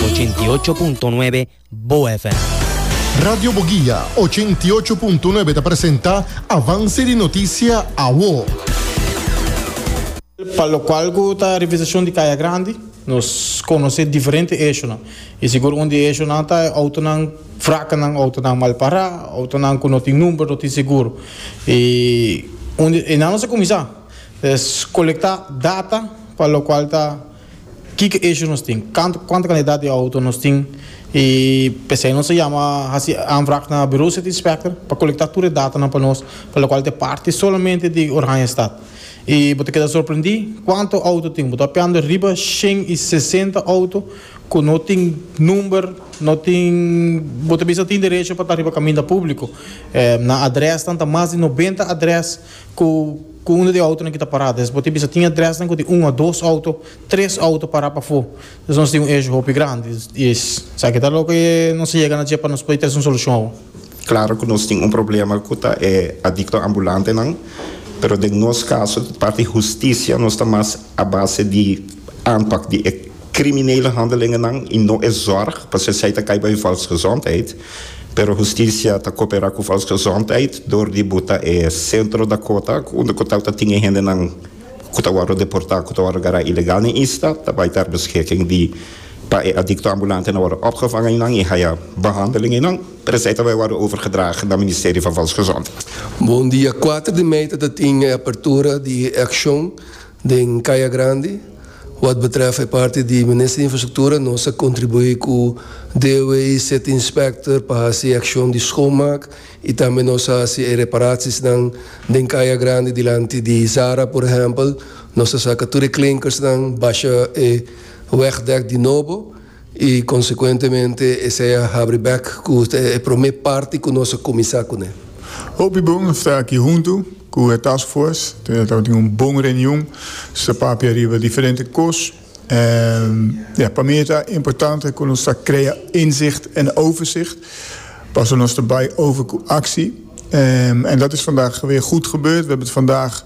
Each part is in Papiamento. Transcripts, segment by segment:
ochenta i ocho punto nuebe Bo FM. Radio Boguia ochenta i ocho punto nuebe ta presenta Avance di Noticia Awo. Pa locual cu ta revisacion di Caya Grandi, nos conoce diferente ejonan. Y sigur un di ejonan ta e autonan fracanan, autonan mal pará, autonan cu no tin number, no tin seguro. Y un di enan nos a cuminsa, es colecta data pa locual ta. Kiko issue nos tin, kantu kuantu kantidat di outo nos tin y pesey nos a yama hasi aanvraag na Bureau City Inspector pa kolektá tur e datanan pa nos pa lokual ta e parti solamente di Oranjestad y bo ta keda sorprendí kuantu outo tin bo ta hopiando riba shen y sesenta outo ku no tin number no tin bo ta bisa tin derecho pa ta riba kaminda públiko nan adresnan ta mas di nobenta adres. Ku ku unda di outonan ki ta pará. Entonces bo tin bisa tin adrèsnan ku tin un o dos outo, tres outo pará pafó. Entonces nos tin un issue hopi grandi. I esaki ta loke nos a yega na dje pa nos pudi trese un solushon awor. Klaro ku nos tin un problema ku ta e adikto ambulantenan, pero den nos kaso di parti hustisia nos ta mas a base di aanpak di e kriminele handelingennan i no e zòrg, pasobra esei ta kai bai un falsgezondheid. Pero hustisia ta koperá ku Fals Gezondheid dor di buta e Centro Dakota unda ku tabata tin e hendenan ku ta wòrdu deportá, ku ta wòrdu gará ilegal den isla, ta bai ta arbeschiking di pa e adikto ambulante na wòrdu opgevang einan i haya behandeling einan, pero esei ta bai wòrdu overgedrage na Ministerie van Volksgezondheid. Bon di a kuater di mei tabata tin e apertura di e akshon. Den Kaya Grandi, wad betrèf e parti di Minister di Infrastruktura, nos a kontribuí ku DOW i City Inspector pa hasi akshon di schoonmaak i tambe nos a hasi e reparaciesnan den Kaya Grandi dilanti di Zara por ehèmpel, nos a saka tur e klinkers nan, basha e wegdèk di nobo. I konsekuentemente esei a habri bèk ku ta e promé parti ku nos a kuminsá kuné. Hopi bon a sta aki huntu ku e task force. E tabata tin un bon reunion. Nos a papia riba diferente kos. En ja, pa mi ta importante ku nos ta krea inzicht en overzicht. Paso nos ta bai over ku aksi. En dat is vandag weer goed gebeurd. We hebben het vandaag.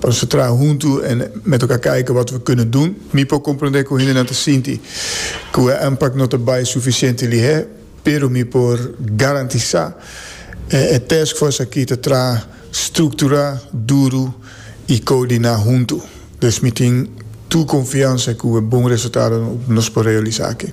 Pa nos ta traha huntu en me toka kijk wata we kunen dun. Mi por komprondé ku hendenan ta sinti ku e anpak no ta bai sufisiente lihé, pero mi por garantisá e taskfors aki ta traha strukturá, duru i koordiná huntu. Dus mi tin tur konfiansa ku e bon resultado nos por realisá aki.